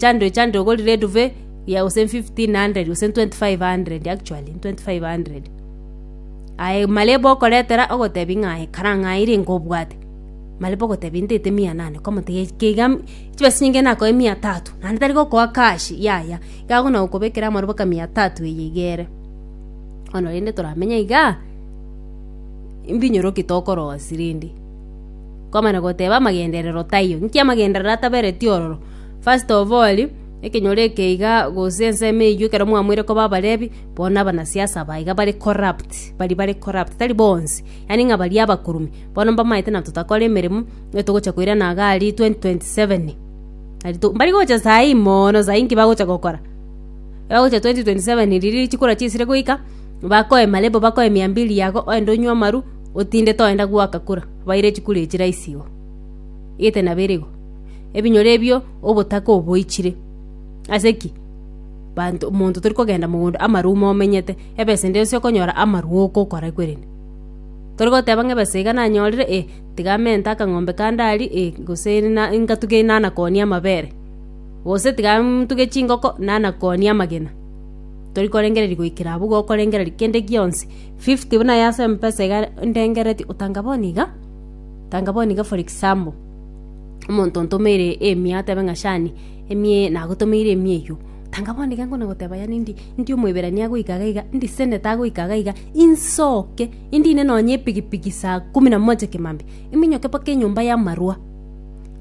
chando echando ogorire eduve ya gose 1500 gose 2500 actually 2500 aye marebo okoretera ogotebi ng'a aye kara ng'a aye renge obwate marebo ogoteba intete mia nane okamotebia gaki keiga chibesa chinyinge nakoe mia tatu naende tari gokoa cash yaya iga agona gokobekera amaro mpaka mia tatu eye iga ere bono rende toramenye igaa mbinyoro ki tokorosia rende kwamana goteba amagenderero taiyo nki amagenderero atabereti ororo. First of all, ekenyoro eke iga gose ensemo eyio ekero mwamoire koba abarebi, bono abanasiasa aba iga bare corrupt, baria bare corrupt, tari bonsi, yaani ng'a baria abakoro ime, bono mbamaete na totakore emeremo, nigo togocha koirana iga aria 2027. Aria to mbari gocha saii moono saii nki bagocha gokora? Ebagocha 2027 riria chikura chisire goika, bakoe malebo bakoe mia mbili yago oende onywe amaru, otinde toenda gwoaka kura, baire chikura echi rahisi igo. Igete nabere igo. ebinyoro ebio obotaka oboichire. Ase ki? Banto omonto tori kogenda mogondo amarwa ume omenyete, ebesa ende yonsi okonyora amarwa ogokora kwerende. Tori goteba ng'a ebesa iga nanyorire eh tiga mente akang'ombe kande aria eh gose na ngatuge nanakonia amabere, gose tiga ntuge chingoko nanakonia amagena. Tori korengereria goikera abwo igo okorengereria kende gionsi. Fifty buna ase Mpesa iga ndengeretie otanga bono iga, tanga bono iga for example. omonto ontomeire emia atebe ng'a shani, emia eye nagotomeire emia eyio. Tanga bono iga nkona goteba yaani ndi ndi omoiberania goika iga iga, ndisenete iga goika iga iga, insoke indine nonye epigipigi saa kumi na moja kimambi, iminyoke mpaka enyomba y'amarwa,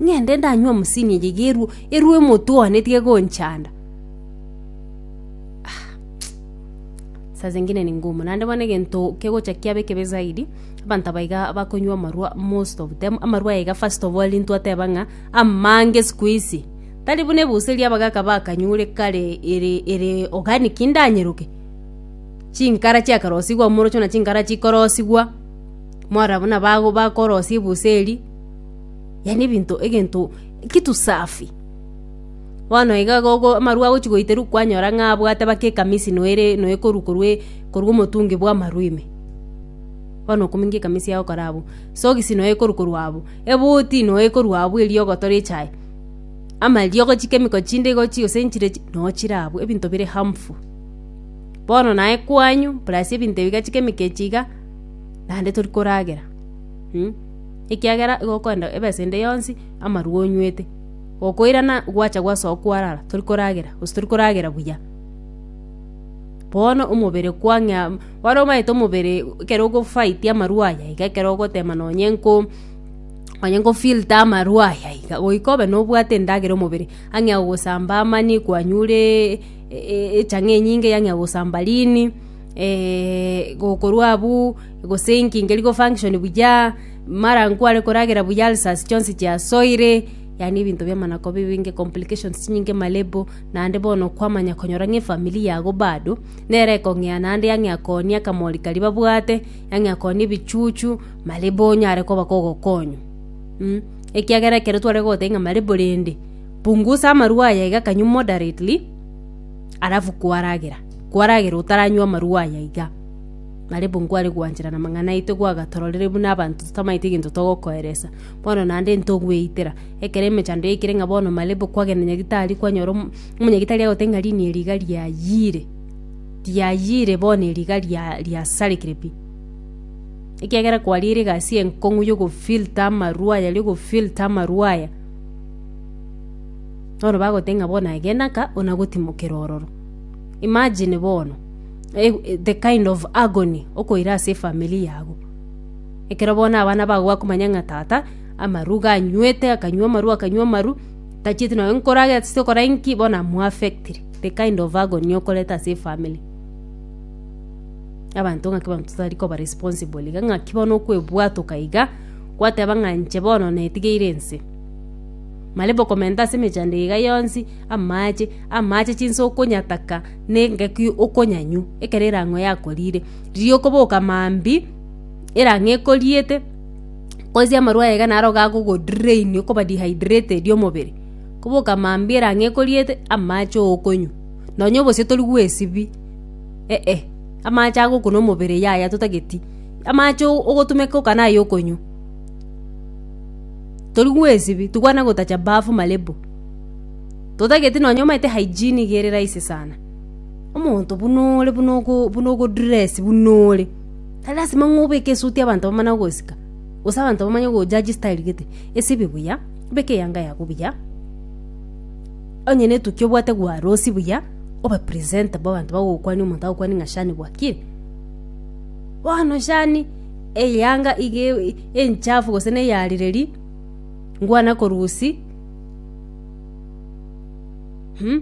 ng'ende ndanywe omosini eye iga erwe erwe omotwe one etige gonchanda ah mtch. Saa zingine ni ngumu naende bono egento kegocha kiaba ekebe zaidi. Abanto aba iga bakonywa amarwa most of them, amarwa aya iga first of all intwe ateba ng'a amange sikuisi tari buna ebusa eria abagaka bakanyure kare ere ere organic indanyeroke, chinkara chiakarosigwa omorocho na chinkara chikorosigwa, mwarora buna bago bakorosia ebusa eria, yaani ebinto egento kitu safi. Bono iga gogo amarwa agochi goiterwa kwanyora ng'a abwate baka ekamisi noyo ere noyo ekoru korwa e korwa omotungi bwa amarwa ime. Bono okominga ekamesi yao kore abwo. Sogisi noe ekoru korwa abwo. Ebuti noe ekoru abwo erio ogotora echae. Ama eriogo chikemiko chinde igo chi gose nchire chi no chire abwo ebinto bire harmful. Bono naye kwanyu plus ebinto ebiga chikemiko echi iga naende tori koragera mm. Ekiagera igo okoenda ebesa ende yonsi amarwa onywete. Gokoirana gwacha gwasoa kwarara tori koragera gose tori koragera buya. Bono omobere kwa ng'a. Kware obaete omobere ekero ogofight amarwa aya iga ekero ogotema nonye nko nonye nko filter amarwa aya iga goika obe nobwate endagera omobere ang'e agosamba amani kwanyure echang'e enyinge yang'e agosamba rini gokorwa abwo gosinkinge rigo function buya mara nkware koragera buya ulcers chionsi chiasoire yaani ebinto biamana koba ebinge complications chinyinge malebo naende bono kwamanya konyora ng'a efamiri yago bado. Nere ekong'ea naende yang'eakonie akamori karia babwate, yang'eakonie ebichuchu, marebo onye are koba kogokonywa. Ekiagera ekero tware goteba ng'a marebo rende, pungusa amarwa aya iga kanywe moderately, alafu kwaragera, kwaragera otaranywa amarwa aya iga. Marebo nkware gwanchera namang'ana aito gwagatororire buna abanto totamaete egento togokoeresa. Bono naende ntogweitera, ekero emechando yaikire ng'a bono marebo kwagenda nyagetari kwanyora omo. Omonyagetari agote ng'a riini eri iga riayiire, riayiire bono eri iga ria- riasarekire pi, ekiagera kwariire egasi enkong'u ya ogofilter amarwa aya, ria ogofilter amarwa aya. Bono bagoteba ng'a bono aye genda ka onagotimokera ororo. Imagine bono, eg- e- the kind of agony okoira ase efamiri yago, ekero bono abana bago bakomanya ng'a tata amarwa iga anywete akanywa amarwa akanywa amarwa. Tachieti naye nkorage ase okora inki bono am affected the kind of agony okoreta ase efamily abanto ngaki abanto totari koba responsible iga ngaki bono okwebwatoka iga gwateba ng'a inche bono netigeire ense maria bokomenta ase emechando iga yonsi amache amache chinsa okonyataka na engaki okonyanywa ekero erang'o yakorire riria okoboka mambia erang'o ekoriete. Korisia amarwa aye iga naro gakogo drain okoba dehydrated omobere. Koboka mambere ang'e ekoriete amache okonywa. Nonya obosio tori gwesibia eeh amache agokuna omobere yaya totageti. Amache ogotumeka oka naye okonywa. Tori gwesibia tokwana gotacha bafu malebo. Totageti nonya omanyete hygiene iga ere raisi sana. Omonto buna ore buna ogo dress buna ore. Tari lasima ng'a obeke esuti abanto bamanye gogosika, gose abanto bamanye gojaji style gete. Esibi buya, beka eyanga yago buya, onye netuki obwate gwarosi buya, obe presentable abanto bagokwania omonto agokwanie ng'a shani bwakire. Bono shani eyanga iga e- enchafu gose na eyarereri, ngwana korusia, mmh.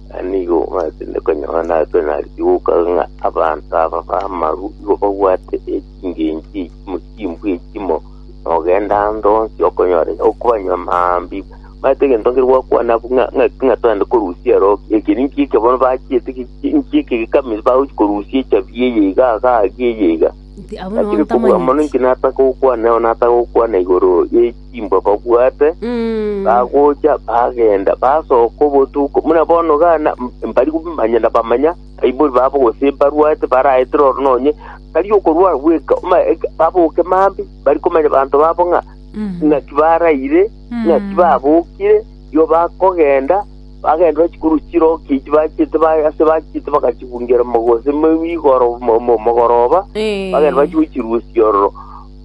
Na nigo machete konyora nabe narigoka ng'a abanto aba bamaru igo babwate echingencho echimo chimbwa echimo, na ogenda ande onsi okonyora iga okobanywa mambia iga. Omanyete egento nkere gwakwana abwo ng'a- ng'a- ng'a twende korusia ero ekeri nki eke bono bachiete ki- ki- nki eke gekamiri bagochi korusia echabi eye iga iga iga eye iga. Inki abwo nabo Lakini kobua mono ntamanyeti? inki nataka gokwana nao nataka gokwana igoro ye chimbwa babwate, Mm. bagocha bagenda basoka obotuko muna bono gana mbari kumanya na bamanya aibori babo gose barwate baraetera oro nonye tari okorwara bweka oma eka- baboke mambi bari komanya banto babo ng'a Mm. ng'aki baraire Mm. ng'aki babokire yo bakogenda bagenda bachikuru chiroki echi bachete ba- ase bachete bakachibungera mogose mo- igoro mo- mo- mogoroba Eh. bagenda bachigochirusia ororo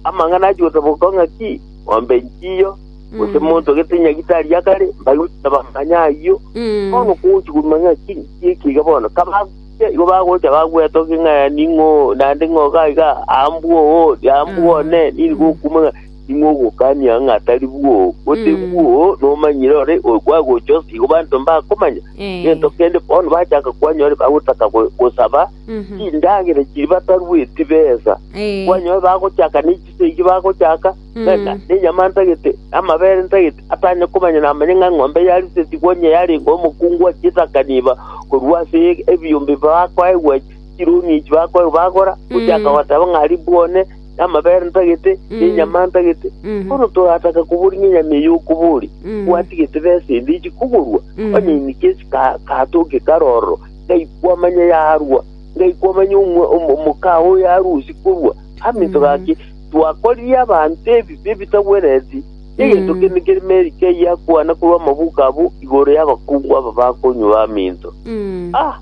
Amang'ana ayio gose boka ng'a ki, ng'ombe nchiyo, gose Mm. monto gete nyagita aria kare, mbaiga gochia bamanya ayio. Mm. Bono kogochi koruma ng'a ki, ki eki iga bono. Kabagochia, igo bagocha bagwetokia ng'a ning'o, naende ng'o iga iga, ambwo oo, ambwo Mm. one, nini Mm. gokuma ng'a ning'o ogokania ng'a tari bwo. Gose Mm. bwo, nomanyire ore, oyo kwagocha ase igo banto mbakomanya. Eh. Gento kende bono bachaka kwanyora bagotaka go- gosaba, chindagera echi batarueti besa, Eh. kwanyoe bagochaka ne chiso echi bagochaka, Mm. reka nenyama ntagete, amabere ntagete, atanye komanya namanye ng'a eng'ombe yarisetigwe onye yarenge omokungu achietaka niba, korwa ase e- ebiombe bakoegwa chironi echi bakoegwa bagora, gochaka Mm. goteba ng'a ribwone, amabere ntagete, Mm. nenyama ntagete, Mhm. bono torataka kobori ng'a enyama eye okobori, Mm. gwatigete besa ende echi kogorwa, Mm. onye inike ase ka- katoke karoro, ngaikwa amanya yarwa, ngaikwa amanya omwa omo- omoka oo yarusi korwa aminto Mm. gaki, twakorire abanto ebibe ebitagwenereti, egento Mm. kende kere meri keyio yakwana korwa amabuko abo igoro y'abakungu aba bakonywa baminto. Mm. Ah,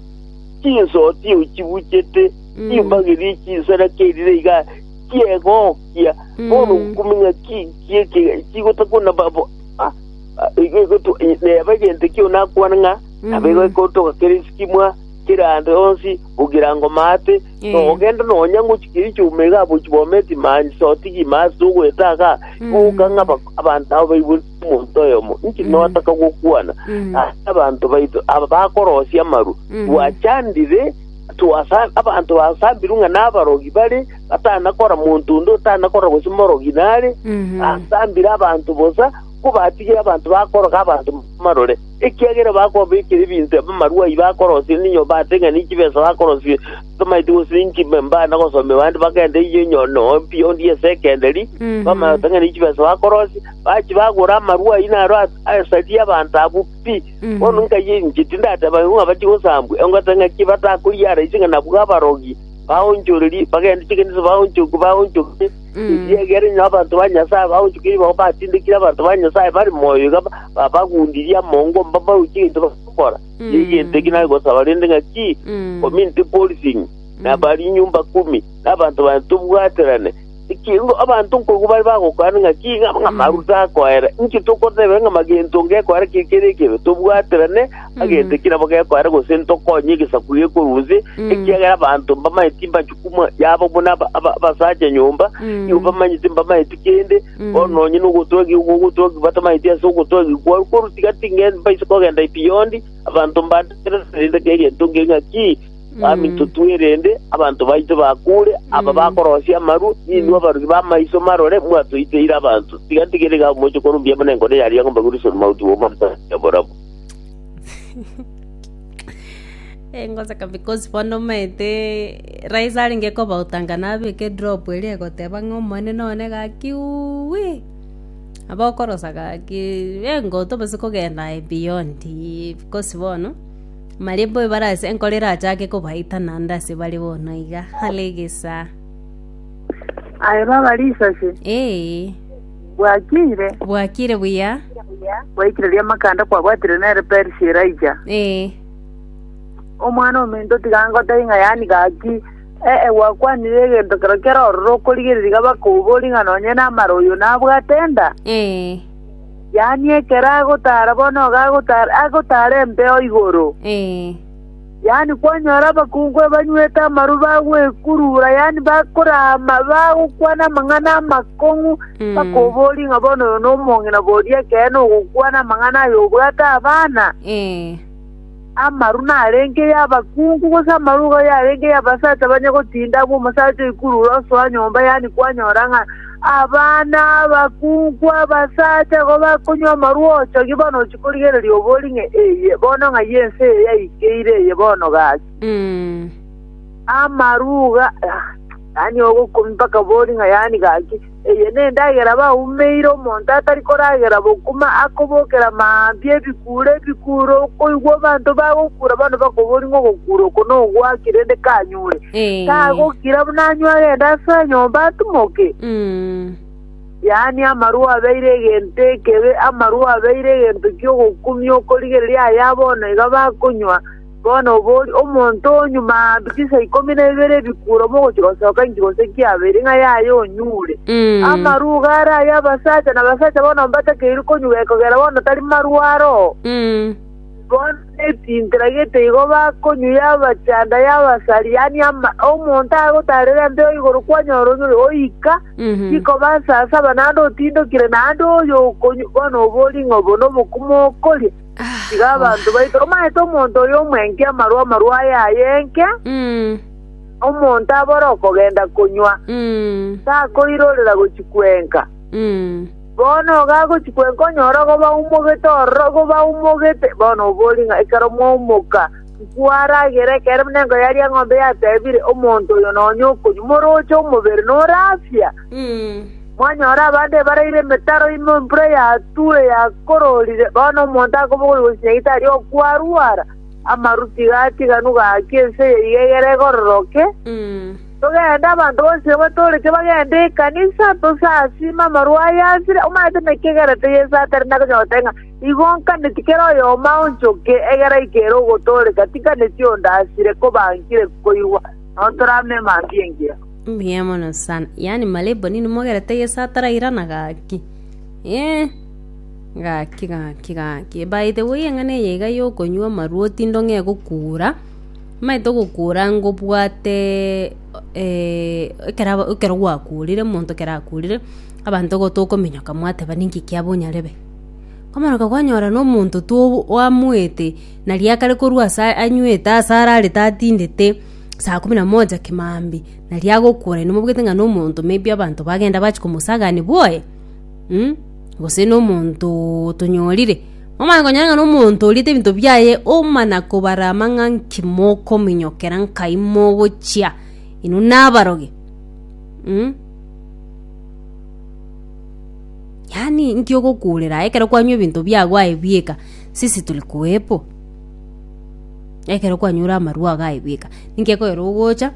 chinsoti eo chibuchete, Mm. chimbagerie chinsara kerire iga chiegokia, Mm. bono kumenya ki kieke chigotakuna babo ah, ah, igo igo tu- neba egento ekio nakwana ng'a Naboigo ekontoka kera esikimwa kera ande onsi gokiira ngoma ate, Eh. nogenda nonya ngochi keri chiouma iga aboichi Bometi mani sotigi ime ase togoeta iga, igo gokang'a aba- abanto aba baigwe omonto oyomo, inche notaka gokwana Mm. ase abanto baito aba bakorosia amarwa, Mhm. twachandire twasa abanto basambirwe ng'a nabarogi bare, batanakora monto onde otanakora gose morogi nare, Mhm. asambire abanto bosa, ko batigire abanto bakoroga abanto marore. Ekiagera bakobekeria ebinto ebi amarua ai bakorosia ninyo bateng'enie chibesa bakorosia tomaeti gose ninki mbe mbana gosomia bande bagende eyio inyo noo mbuya onde ase ekenderia bamanya goteng'enia chibesa bakorosia bachi bagora amarua ayio naro as- asari abanto abwo pi bono nkayia inche tindateba igo ng'a bache gosambwa engoteba ng'aki batakoria ara ase ng'a nabwo abarogi baonchorerie bagende chikanisa baonchoke baonchoke Erio egere inwe abanto ba Nyasae abaonchokia igo batindekire abanto ba Nyasae bare moyo iga ba- babagundirie amongo mbabauche egento bagokora, tiga egento eki nare gosaba rende ng'aki, community policing, na bari nyumba kumi, na abanto bane tobwaterane. Ekiagera abanto nkoigwa bare bagokwana ng'aki, ng'a ng'a amaru takoera. Inki tokotebera ng'a magento ngekoera ki kere ekebe? Tobwaterane magento eki nabo gekoera gose ntokonye egesaku gekorwa inse, ekiagera abanto mbamanye timbachi Imo yabo buna aba- aba- abasacha nyomba, Mm. igo bamanyete mbamaeti kende, Mm. bono nonye nogotogi igo ogotogi batamanyeti ase ogotogi kwao, korwa tiga tinge mbaise kogenda epiyondi, abanto mbategererende ng'a erianto ngeria ng'a ki Mm. baminto twerende, abanto baito bakure, aba Mm. bakorosia amaru, ninwe Mm. abarogi b'amaiso marore, mwatoiteire abanto. Tiga ntigere iga moche korwa mbuya buna enkoro yaria ng'a mbaguriswe mauti bw'omonto oboramo. Eh, ngoseka because bono omanyete rais arenge kobautanga nabeka edrop eria egoteba ng'a omonene one gaki uwii, nabo okorosa gaki engoto gose kogenda aye beyond ii because bono marembo ebarase enkoro erachake kobaita naende ase bare bono iga are egesaa. Aye baba risase. Eeh. Bwakiire. Bwakiire buya. Bwaikire riamakanda kwabwatire nere Perisi Elija. Ee. Omwana ominto tiga ngotebie ng'a yani gaki ee gwakwanire egento kero kero ororo okorigereria iga bakoboria ng'a nonye namara oyo nabwate enda Ee. yani ekero agotara bono iga agotara agotara empeo igoro Ee. Yaani kwanyora abakungu abanywete amaru bagwekurura, yaani bakorama, bagokwana amang'ana amakong'u, bakoboria ng'a bono oyo nomong'ina boria ekeene ogokwana amang'ana aya obwate abana? Ee. Amaru narenge y'abakungu, gose amaru igo yarenge y'abasacha banye gotinda abw'omosacha oikurure osoa nyomba, yaani kwanyora ng'a Abana, abakungu, abasacha igo bakonywa amarwa ochogi bono ochia korigereria obori ng'a eye bono ng'ai ense eye yaikeire eye bono gaki. Amaruga, yaani ogokumi mpaka bori ng'a yaani gaki. Eye nendagera baumeire omonto atari koragera bokuma akobokera maambia ebikuuro ebikuuro okoigwa abanto bagokura bono bakobori ng'a ogokura oko nogwaki rende kanyure. tagokira buna anywe agende ase enyomba atimoke? Yaani, amarwa abeire egento ekebe, amarwa abeire egento ki'ogokumia okorigereria aya bono iga bakonywa. Bono obori, omonto onyuma mbisa ikomi na ibere ebikuro mogochia gosoka inki gose kiabeire, ng'a yaye onyure? Amarwa iga are ay'abasacha, na abasacha bono mbatakeiru konywa ekogera bono tari marwa aro? Bono nechinkera gete igo bakonywa y'abachanda y'abasariani ama, omonto agotarera embeo igoro kwanyora onyore oika chikoba asasaba naende otindokire, naende oyo okonywa bono obori ng'a obo nobokumo okoria. Tiga abanto baito, omanyete omonto oyo omwenke amaru amaru aye aye enke, omonto abore okogenda konywa, takoirorera gochia kwenka. Bono iga agochia kwenka onyore ogo baumogete ororo ogo baumogete, bono oborie ng'a ekero mwaimoka, nkwaragere ekero buna enka yaria eng'ombe yatebire, Omonto oyo nonya okonywa, moroche omobere nore afya. Mwanyora abande ebaraire emetaro ime embura yatue yakororire, bono omonto akobogoria gosinyaga tari okwarwara, amaru tiga atiganwa gaki ense eye iga egere egororoke. Togende, abanto bonsi abatoorete bagende ekanisa, tosasime amarwa aya asire, omanyete naki egerete Yeso atari na konyota ng'a igo nkaneti kera oyomo aonchoke, egera aike ere ogotooreka, tinkaneti onde asire koba nkire koirwa, nao toramanye emantu y'engira. Mbuya mono sana. Yaani malebo nini mogerete Yesu atarairana gaki. Eh. Gaki gaki gaki. By the way eng'ana eye iga yokonywa amarwa otinde ong'e gokura. Nimaete ogokuura ngobwate ekero aba ekero gwakuurire omonto ekero akuurire, abanto igo tokominyoka mwateba ninki kiabo onyarebe. Komaroka kwanyora na omonto to oamoete na riakare korwa ase anywete ase ararete atindete saa kumi na moja kimambi nari agokuura ere mobwate ng'a na omonto maybe abanto bagenda bachi komosagaani bwoye gose na omonto otonyorire. Momanye konyora ng'a nomonto oriete ebinto biaye omana kobarama ng'a nki mokominyokera nkai mogochia inwe nabaroge mm? yaani nki ogokurera aye ekero kwanywa ebinto biago aye bieka sisi turi kuwepo ekero kwanyure amarwa ago aye bieka ninki ekoera ogocha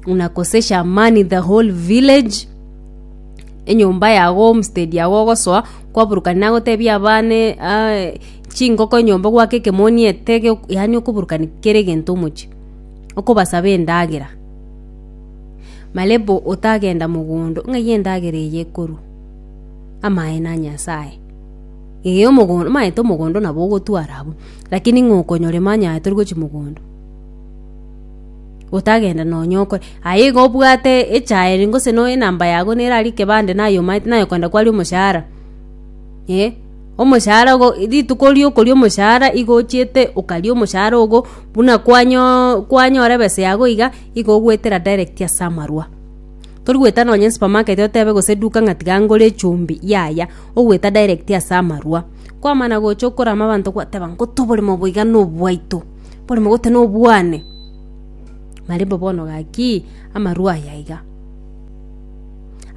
unakosesha amani the whole village enyomba yago homestead yago ogosoa kwaburukani nagoteebia abana chingoko enyomba gwake ekemoni etege yaani okoburukani kera egento omochie okobasaba endagera malebo otagenda mogondo ng'ai endagera eye ekorwa amaye na nyasaye ee omogondo omanyete omogondo nabo ogotwara abwo lakini ng'a okonyorema onye aye torigochia mogondo. gotagenda nonya okore. Aye iga obwate echaeni gose no enamba yago nere aria ekebande naye omanyete naye okogenda kwari omoshahara eh omoshahara ogo rituko ria okoria omoshahara igo ochiete okaria omoshahara ogo buna kwanyoo kwanyora ebesa yago iga igo ogoetera direct ase amarwa. Tori goeta nonya esupermarket otebe gose eduka ng'a tiga ngore echumbi yaya ogoeta direct ase amarwa. Kwamana gocha okorama abanto kwateba nkoto oboremo obo iga nobwaito. Mborome gotana obwane. Marembo bono gaki amarua aya iga.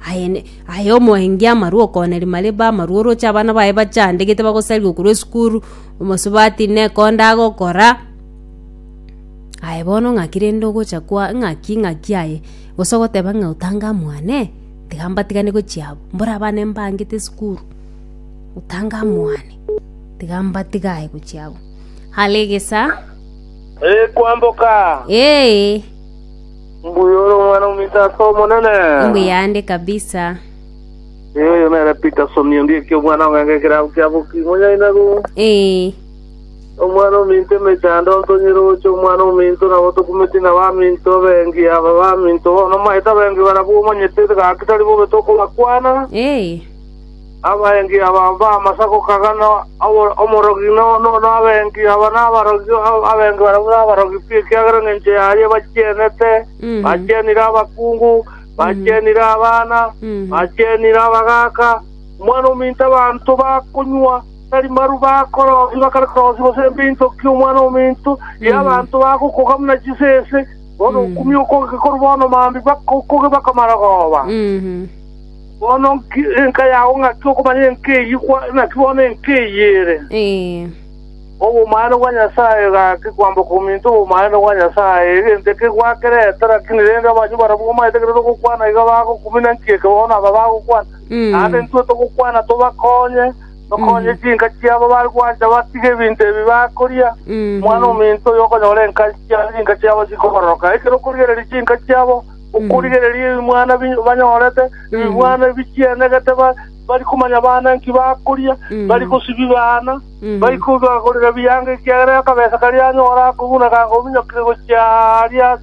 Aye ne- aye omoeenge amarua okoneria marembo amarua oroche abana baye bachandegete bagosariwa korwa esukuru, omosubati neko onde agokora, aye bono ng'aki rende ogocha kwa ng'aki ng'aki aye gose ogoteba ng'a otange aa mwane, tiga mbatigane gochia abwo, mbore abana mbangete esukuru, otange aa mwane, tiga mbatiga aye gochia abwo. Alegesa. Ee, kwamboka. Ee. Mbuya ore omwana ominto ase Omonene. Mbuya ande kabisa. Ee, oyo nere Peterson onde eki omwana ong'enga ekero abukia boki monyaina go. Ee. Omwana ominto emechando ntonyere oche omwana ominto nabo tokumeti na baminto abengi aba baminto bono maete abengi barabwo omanyete gaki tari bobe tokobakwana. Ee. Abaengi aba b'amasa gokagana omorogi nono abaengi aba nabarogi, abaengi barabwo nabarogi pi, ekiagera engencho yaye bachienete, bachienire abakungu, bachienire abana, bachienire abagaaka. Omwana‐o‐ominto abanto bakonywa, tari marw bakorosia, bakare korosia gose mbinto ki omwana‐o‐ominto, erio abanto bagokoga buna chisese, bono okumiu okoge korwa bono mambi bakoge bakamara goba. Bono nki enka yao ng'aki okomanya enka eyio kwa naki bono enka eyio ere? Obomanene bwa Nyasae gaki kwamboka ominto obomanene bwa Nyasae, egento eke gwakerete, lakini rende abanywi barabwo bamaete kerere ogokwana iga bagokumina nki eke bono aba bagokwana. Naende intwe togokwana tobakonye, tokonye chinka chiabo bare gwancha batige ebinto ebi bakoria. Omwana ominto oyokonyora enka chiao chinka chiabo chikobororoka, ekero okorigereria chinka chiabo, Okorigereria ebimwana bi- banyorete, ebimwana ebichienegete, ba- bari komanya baana nki bakoria, bari gosibi baana, bari kobagorera ebianga ekiagera akabesa karia anyora ako buna gakominyokire gochia aria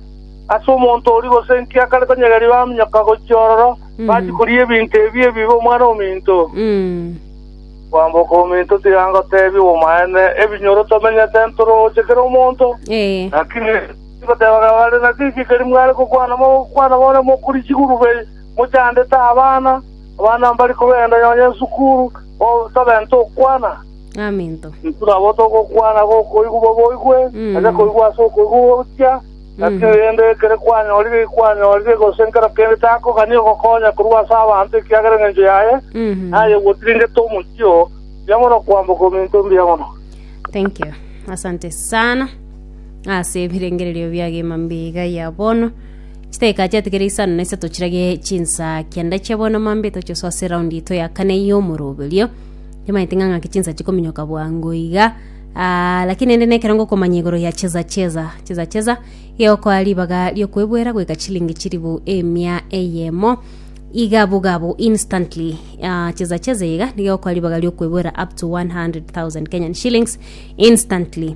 ase omonto oria, gose nki akare konyegeria baminyoka gochia ororo, bachia koria ebinto ebi ebibe omwana ominto. Kwamboka ominto tiga ngoteebia obw'omaene, ebinyoro tomenyete ntoroche kera omonto, Ee. lakini Timotebaga bare na chichi keri mware gokwana mogokwana bono mokuri chigurube mochandete abana, abana mbari kogenda nonya esukuru, oo tobenta okwana. Amento. Intwe nabo togokwana gokoigwa baboigwe, onye koigwa ase okoigwa gochia, naki rende ekero kwanyorire kwanyorire, gose nkero kende takogania ogokonya korwa ase abanto ekiagera engencho yaye, naye gwotiringete omochie oo, mbuya mono kwamboka ominto, mbuya mono. Thank you. Asante sana. ase ebirengererio biagima mbiga ya bono chidakika chiaete kere isano na isato chirage chinsa kianda chia bono mambia etoche soa ase eraundi yaito ya kane ya omoroberio nimaete ng'a ng'ake chinsa chikominyoka bwango iga aa lakini rende nekero ngokomanya igoro ya cheza cheza cheza cheza igokoa ribaga riokoebuera goika chilingi chilifu emia eyemo iga bugabo instantly aa cheza cheza iga nigo egokoa ribaga riokoebuera up to 100,000 kenyan shillings instantly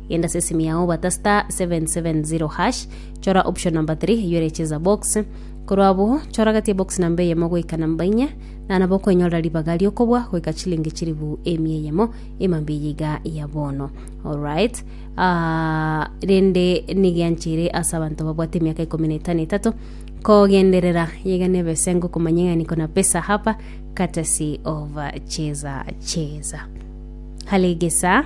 Genda ase esimi yao obata star 770 hash chora option number 3 eyio ere cheza box korwa abo chora gati ebox namba eyemo goika namba inya na nabo okoenyorera ribaga riokobua goika chilingi chiribu emia eyemo emambia eye iga ya bono alright Ah, rende nigianchire ase abanto babwate emiaka ikomi na etano etato kogenderera yega nebesengo komanya ng'ani kona pesa hapa courtesy of uh, cheza cheza halegesa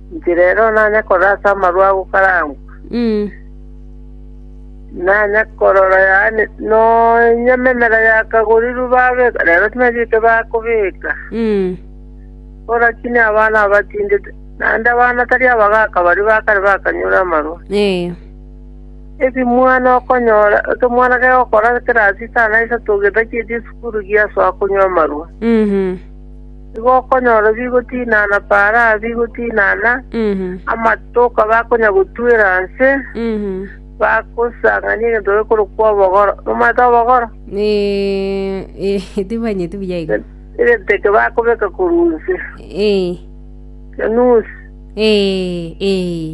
Inche rero nanya korora ase amarwa agokarangwa, nanya korora yaani nonya memera yakagorirwe babeka, rero timanya eke bakobeka. Bo lakini abana abatindi, t- naende abana tari abagaka baria ba kare bakanyora amarwa. Ee. Ekemwana okonyora, ekemwana kegokora ekerasi etano na isato getacheti esukuru giasoa konywa amarwa. Mhm. Nigo okonyora bigotinana Baraa bigotinana, amato okaba akonya gotwera inse, bagosang'ania egento gekorokwa obogoro. Momanyete obogoro? Timanyeti buya igo. Egento eke bakobeka korwa inse, enusu,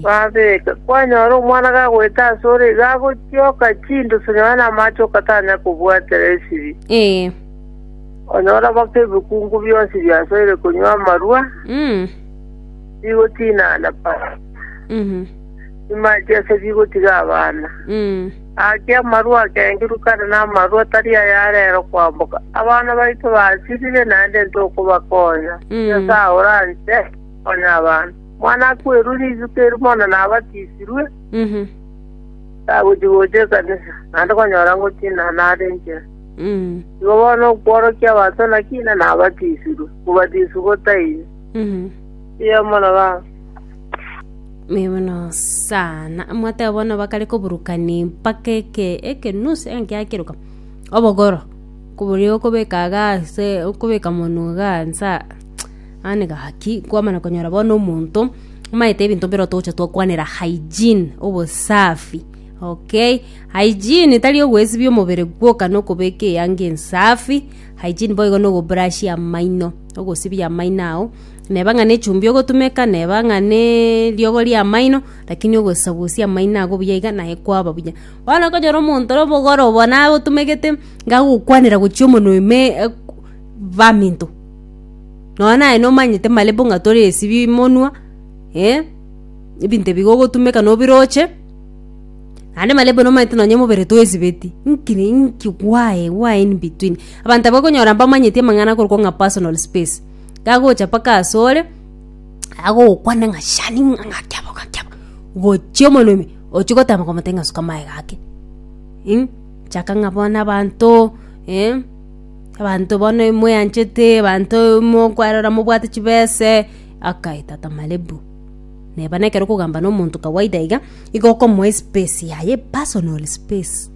babeka. Kwanyora omwana gagoeta ase ore iga agotioka chindusu nonya na amache ogatanya kobwatera esiri. Onyore goka ebikungu bionsi biasoire konywa amarua, Mm. bigotinana pa Mhm. chimache ase bigotiga abana. Mm. Ake amarua akengiru kare n'amarua tari aya rero kwamboka. Abana baito basirire naende ntokobakonya. Mm. Nyasae oranche konya abana. Mwana akwerwe rituko eri bono nabatisirwe, Mhm. tagochi gocha ekanisa, naende konyora ngotinana are enchera. Igo bono okworokia abanto naki, na nabatisirwe? Mobatiswe gotaini. Erio mono ba Mibono sana. Mwateba bono bakare koburukani mpaka eke eke nusu enkia kiruka. Obogoro. Kuburi okobeka gase okobeka monu gansa. Ani gaki kwamana konyora bono omonto maete ebinto biro toche twakwanera hygiene obosafi. Okay. Hygiene tari ogwesibia omobere gwoka na okobeka eyanga ensafi, hygiene boigo na ogobrashia amaino, ogosibia amaino ao, neba ng'a nechumbi ogotumeka, neba ng'a ne eriogo ria amaino, rakini ogosagosia amaino ago buya iga naye kwaba buya. Bono okonyora omonto ore obogoro obo naye otumegete iga agokwanera gochia omonwe ime e- ku baminto, nonye naye nomanyete malebo ng'a toresibia emonwa, eh, ebinto ebigogotumeka nobiroche. Naende mare buna omanyete nonye omobere toesibeti, nki ni nki why why in between. Abanto aba okonyora mbamanyeti amang'ana akorokwa ng'a personal space, gagocha mpaka asore, agogokwane ng'a shani ng'a ng'aki aba ng'aki aba, gochia omonwe ime, ochi gotama komotebia ng'a suka amaega ake ing, chaka ng'a bono abanto eh, abanto bono moeanchete, abanto mokwarora mobwate chibese, akai tata mare bu. Neba nekero okogamba nomonto kawaida iga, igo okomoa espace yaye, personal space.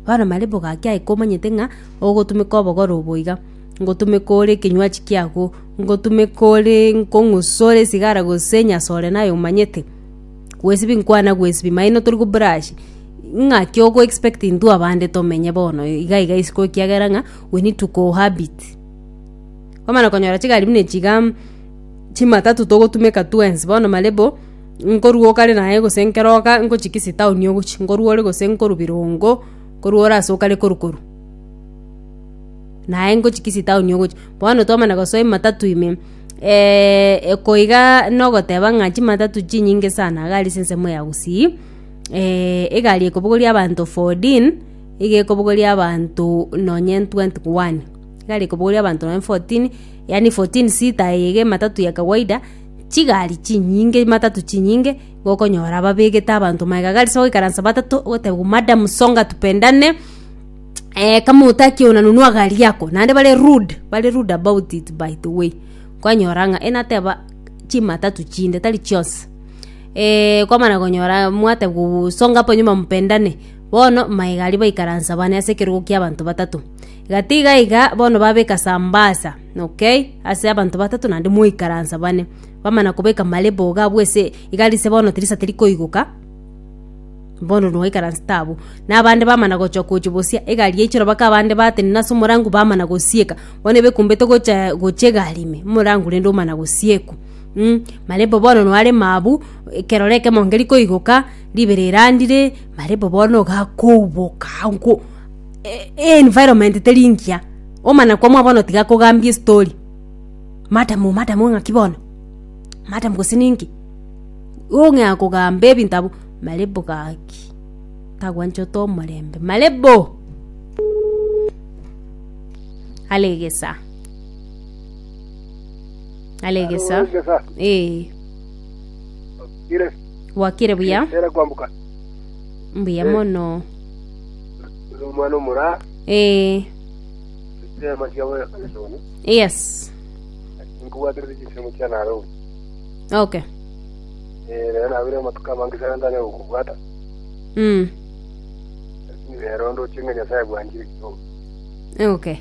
Bono marebo gaki aye komanyete ng'a ogotumeka obogoro obo iga, ngotumeka ore ekenywachi kiago, ngotumeka ore nkong'usa ore esigara gose enyasore naye omanyete, gwesibia nkwana gwesibia, maino tori go brush, ng'aki ogo expect intwe abande tomenye bono iga iga isiko ekiagera ng'a we need to cohabit. Kwamana konyora chigari buna echi igaa. Chimatatu togotumeka twensi bono marebo, nkorwa okare naye gose nkero oka ngochi gisi town ogochi, nkorwa ore gose nkorwa Birongo, nkorwa ore ase okare koru koru. Naye ngochi gisi town ogochi, bono twamana gosoa ematatu ime eko igaa nogoteba ng'a chimatatu chinyinge sana iga ase ensemo ya Gusii egari ekobogoria abanto fourteen, iga ekobogoria abanto nonye twenty one, egari ekobogoria abanto nonye fourteen. yaani fourteen seater eye iga ematatu ya kawaida, chigari chinyinge, matatu chinyinge, igo okonyora babegete abanto magega ase goikaransa batato, ogoteba madam songa tupendane, eh kama hutaki ona nunua gari yako, naende bare rude, bare rude about it by the way, kwanyora ng'a enateba chimatatu chinde tari chionsi, kwamana konyora mwateba songa hapo nyuma mpendane, bono magega aria baikaransa bane ase ekerogo kia abanto batato. Gatiga iga bono babeka Sambasa, okay, ase abanto batato naende moikaransa bane, bamana kobeka marebo iga abwo ase igari ise bono tirisa teri koigoka, bono noikaranse tabo. Na abande bamana gochia gochia bosia egari yaichire aba ka abande batenena ase omorango bamana gosieka, bono ebe ekumbete gocha gochia egari ime, omorango rende omana gosiekwa mm. Marebo bono noarema abwo, ekero renta ekemo nkeri koigoka, ribere erandire, marebo bono iga akouboka ango. Environment teri ngiya, omana kwamwa bono tiga akogambie estory, madam madam ng'aki bono? madam gose ninki? Ong'ea kogamba ebinto abwo, Malebo gaki, tagwanchote omorembe, Malebo! Are egesaa, are egesaa, Egesa, ee, okire, bwakire buya, ere kwamboka. mbuya Eh. mono. Ore omwana omoraa, ee echireema chiabo Hesironi, yes nkobwaterete chinsemo chia Nareu. okay Eh, rero nabire amatuko amange sana ntanyara gokobwata, mm. lakini rero ndoche ng'a Nyasaye bwanchire kidogo. okay